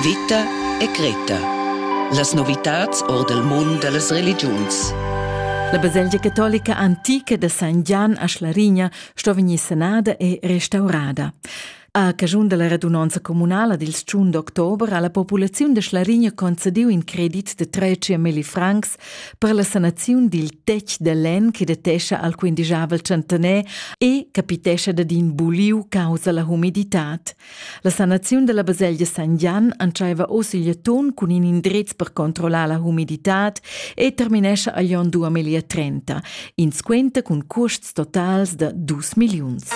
Vita e Greta. Las novitads or dal mund da las religiuns. La baselgia catolica antica da San Gian a Schlarigna sto vegnir sanada e restaurada. A caschun della radunonza comunala dil 1 d'october ha la populaziun de Schlarigna concediu in credit de 300.000 francs per la sanaziun dil tec de lenn che detescha al quindijavel centener e capitescha dad in buliu causa la humiditad. La sanaziun dalla baselgia San Gian entscheiva oz igl atun cun in indrez per controllar la humiditad e terminescha agl onn 2030, in squenta cun custs totals da 2 milliuns.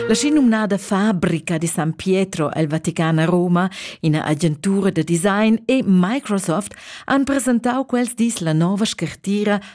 La schi numnada fabrica di San Pietro el Vaticana Roma, ina agentura da design e Microsoft han presentau quels dis la nova scartira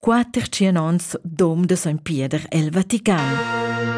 quater tschien ons dom de sogn Pieder el Vatican.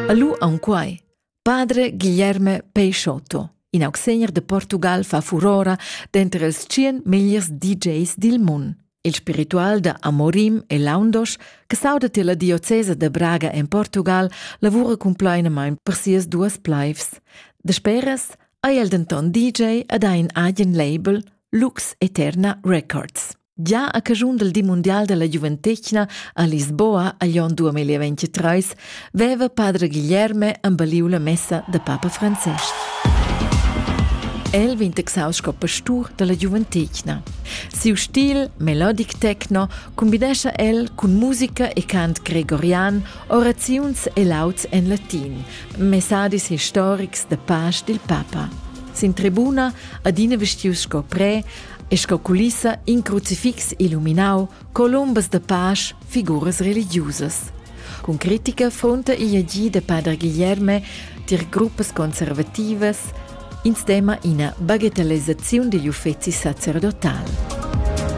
Alu aunquai, padre Guilherme Peixotto, in augsegner de Portugal fa furora denter els tschien megliers DJs dil mund. Il spiritual de Amorim e Laundos, che saudet la diocesa de Braga en Portugal, lavura compleinamein per sias duas pleifs. De speras ha el denton DJ ad ein agen label Lux Eterna Records. Gia a caschun del di mundial della giuventetgna a Lisboa a Glion 2023 veva padre Guilherme embaliu la messa da papa Francesc. El vegn texau sco pastur della giuventetgna. Siu stil melodic techno combinescha el cun musica e cant gregorian, oraziuns e lauds en latin, messadis historics da pasch dil papa. Sin tribuna, adina vestius sco pre, e sco culissa in crucifix illuminau colombas da pasch, figuras religiusas. Cun critica fonta igl agì de Padre Guilherme tier gruppas conservativas in stema ina bagatellezzaziun digl uffeci sacerdotal.